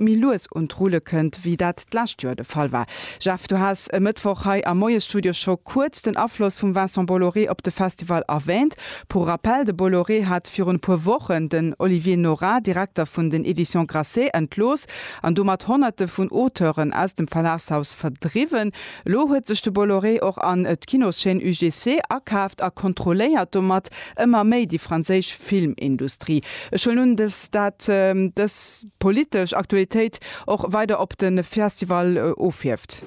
méi lues un d'Rulle kënnt, wéi dat d'lescht Joer de Fall war. Jeff, du has e Mëttwoch hei am Moiesstudio scho kuerz den Afloss vum Vincent Bolloré op de Festival erwäänt. Pour rappel, de Bolloré hat virun e puer Wochen den Olivier Nora, Direkter vun den Editions Grasset, entlooss an domat Honnerte vun Auteuren aus dem Verlagshaus verdriwwen. Elo huet sech de Bolloré och an d'Kinoschaîne UGC akaaft a kontrolléiert domat ëmmer méi déi franséisch Filmindustrie. Ech huelen un, dass dat dës. Politesch Aktualitéit och weider op de Festival ofhierft.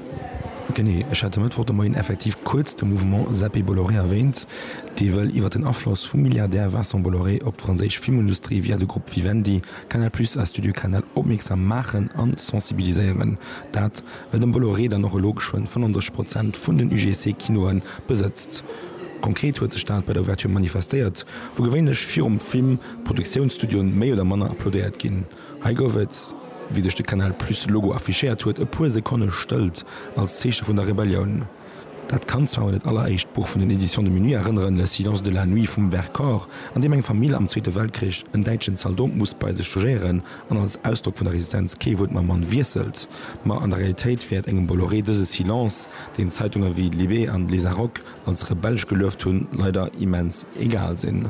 Genee, ech hat e Mëttwoch de Moien effektiv kuerz de Mouvement Zappé Bolloré erwäänt, dee wëll iwwer den Afloss vum Milliardär Vincent Bolloré op d'franséisch Filmundustrie via de Grupp Vivendi, Canal Plus a Studio Canal opmierksam maachen an sensibiliséieren. Dat, well den Bolloré dann och elo geschwënn 35 Prozent vun den UGC-Kinoe besëtzt. Konkret huet sech dat bei der Ouverture manifestéiert, wou gewéinlech virum Film, Produktiounsstudioen méi oder manner applaudéiert ginn. Hei gouf et, wéi sech de Canal Plus Logo affichéiert huet, e puer Sekonne Stëllt als Zeeche vun der Rebellioun. Dat kann zwar un dat alleréischt Buch vun den Editions de Minuit erënneren, Le Silence de la Nuit vum Vercors, an deem eng Famill am Zweete Weltkrich en däitschen Zaldot muss bei sech logéieren an als Ausdrock vun der Resistenz kee Wuert mam Mann wiesselt. Ma an der Realitéit wäert engem Bolloré dëse Silence, deen Zeitunge wéi Libé an Lezarok, als rebellesch gelueft hunn, leider immens egal sinn.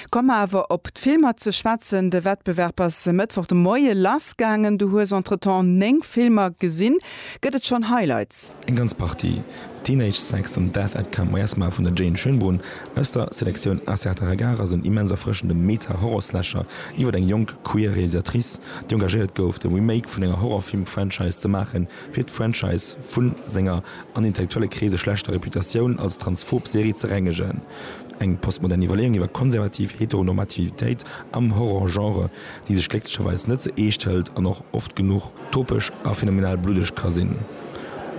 Komme mer awer op d'Filmer ze schwätzen. De Wettbewerb ass e Mëttwoch de Moie lass gaangen. Du hues entretemps 9 Filmer gesinn. Gëtt et schonn Highlights? Eng ganz Partie. Teenage Sex an Death at Camp Wiersma vun der Jane Schönbrunn aus der Selektioun Un certain regard ass en immens erfrëschende Meta-Horror-Slasher iwwer eng jonk queer Realisatrice, déi engagéiert gouf, de Remake vun enger Horrorfilm-Franchise ze maachen, fir d'Franchise vu senger an intellektuelle Kreese schlechter Reputatioun als transphob Serie ze rengegen. Eng postmodern Iwwerleeung iwwer konservativ Heteronormativitéit am Horror-Genre, déi sech glécklecherweis net ze eescht hëlt an och oft genuch topesch a phänomenal bluddeg ka sinn.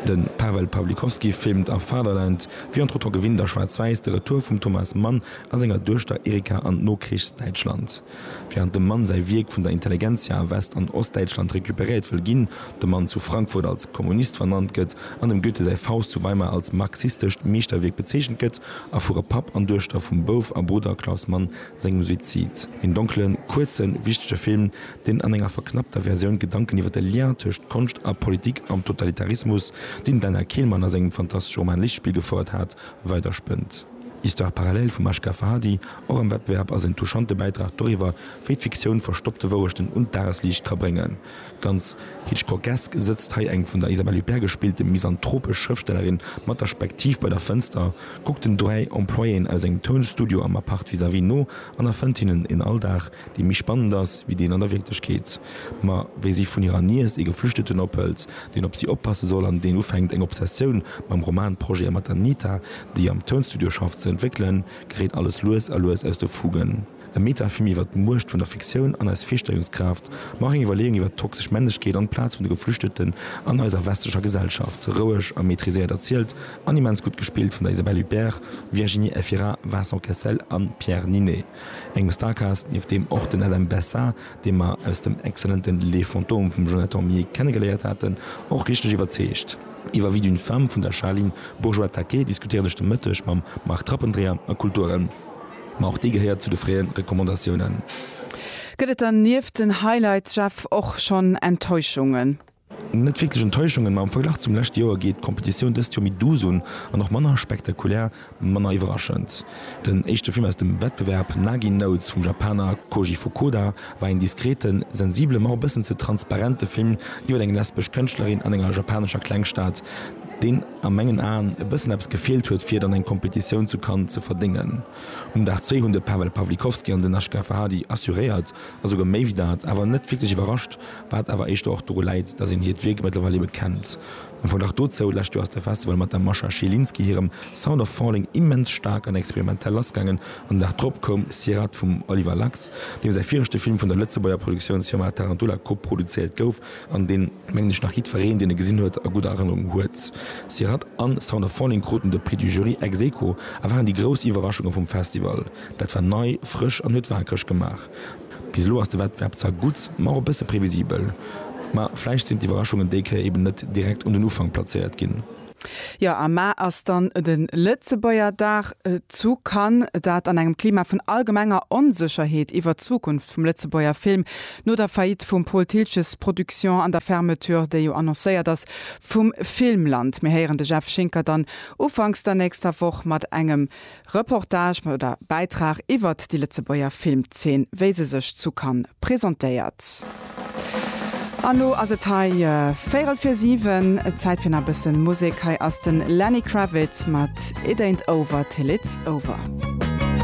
De Pawel Pawlikowski filmt a Fatherland, wéi entretemps gewinnt a schwaarz-wäiss, de Retour vum Thomas Mann a senger Duechter Erika an d'Nokrichs-Däitschland. Während dem Mann säi Wierk vun der Intelligentsia a West an Ostdäitschland recuperéiert wëll ginn, de Mann zu Frankfurt als Kommunist vernannt gëtt an dem Goethe säi Faust zu Weimar als marxistescht Meeschterwierk bezeechent gëtt, erfuere Papp an Duechter vum Bouf a Brudder Klaus Mann sengem Suizid. Een donklen, kuerzen, wichtege Film, deen an enger verknappter Versioun d'Gedanken iwwer de Lien tëscht Konscht a Politik am Totalitarismus, deen den Daniel Kehlmann a sengem fantastesche Roman Lichtspiel gefouert hat, weiderspënnt. Histoire parallèle vum Ashgar Farhadi Och am Wettbewerb ass en touchante Bäitrag doriwwer, wéi d'Fiktioun verstoppte Wourechten un d'Dagesliicht ka bréngen. Ganz Hitchcockesk sëtzt hei eng vun der Isabelle Huppert gespillte misanthropesch Schrëftstellerin mat der Spektiv bei der Fënster, kuckt den dräi Employéen aus engem Tounstudio am Appart vis-à-vis no an erfënnt hinnen een Alldag, dee méi spannend ass wéi deen an der Wierklechkeet. Ma wéi si vun hirer Niess ee Geflüchteten ophëlt, deen op si oppasse soll an deen ufänkt, eng Obsessioun mam Romanprojete mat der Nita, déi am Tounstudio schafft, ze entwéckelen, geréit alles lues a lues aus de Fugen. E Metafilm iwwer d'Muecht vun der Fiktioun an eis Virstellungskraaft, ma och eng Iwwerleeung iwwer d'toxesch Männlechkeet an d'Plaz vun de Geflüchteten an eiser westlecher Gesellschaft. Roueg a maitriséiert erzielt an immens gutt gespillt vun der Isabelle Huppert, Virginie Efira, Vincent Cassel an Pierre Ninet. Eng Starcast, nieft deem och den Adam Bessa, dee mer aus dem excellenten Les Fantômes vum Jonathan Millet kennegeléiert haten, och richteg iwwerzeegt. Iwwer Vie d'une femme vun der Charline Bourgeois-Taquet diskutéieren ech de Mëtteg mam Marc Trappendreher a Kulturen, ma och déi gehéiert zu de fréie Recommandatiounen. Gëtt et dann nieft den Highlights, Jeff, och schonn Enttäuschungen? Net wierklech Enttäuschungen, ma am Verglach zum leschte Joer geet d'Kompetitioun dëst Joer méi douce un an och manner spektakulär, manner iwwerraschend. Den éischte Film aus dem Wettbewerb, Nagi Notes vum Japaner Koji Fukuda, war een diskreten, sensibele ma och e bëssen ze transparente Film iwwer eng lesbesch Kënschtlerin an enger japanescher Klengstad, deen a mengen Aen e bëssen eppes gefeelt huet fir et an eng Kompetitioun zu Cannes ze verdéngen. Um Dag zwee hunn de Pawel Pawlikowski an den Ashgar Farhadi assuréiert a souguer méi wéi dat, awer net wierklech iwwerrascht, Wat awer éischter och doru läit, datt een hiert Wierk mëttlerweil ebe kennt. Am Verglach dozou, Lescht Joer ass de Festival mat der Mascha Zielinski hirem Sound of Falling immens staark an experimentell lassgaangen an den Dag drop koum Sirhat vum Oliver Lacks, deem säi viregte Film vun der Lëtzebuerger Produktiounsfirma Tarantula koproduzéiert gouf an deen, mengen ech, nach jiddfereen, deen e gesinn huet, a gudder Erënnerung huet. Sirhat an Sound of Falling kruten de Prix du Jury ex aequo a waren déi grouss Iwwerraschunge vum Festival. Dat war nei, frësch an huet waakreg gemaach. Bis elo ass de Wettbewerb zwar gutt, ma och e bësse previsibel. Ma vläicht sinn d'Iwwerraschungen déi Kéier eben net direkt un den Ufank plazéiert ginn. Jo, am Mä ass dann de Lëtzebuerger Dag zu Cannes. Dat an engem Klima vun allgemenger Onsécherheet iwwer d'Zukunft vum Lëtzebuerger Film, no der Faillite vum Pol Thiltges Production an der Fermeture, déi jo annoncéiert ass, vum Filmland. Mir héieren de Jeff Schinker dann ufanks der nächster Woch mat engem Reportage oder Bäitrag iwwert déi Lëtzebuerger Filmzeen, wéi se sech zu Cannes presentéiert. An lo ass et hei véierel fir siwen, Zäit fir nach e bëssen Musek. Hei ass den Lenny Kravitz mat It Ain't Over Till It's Over.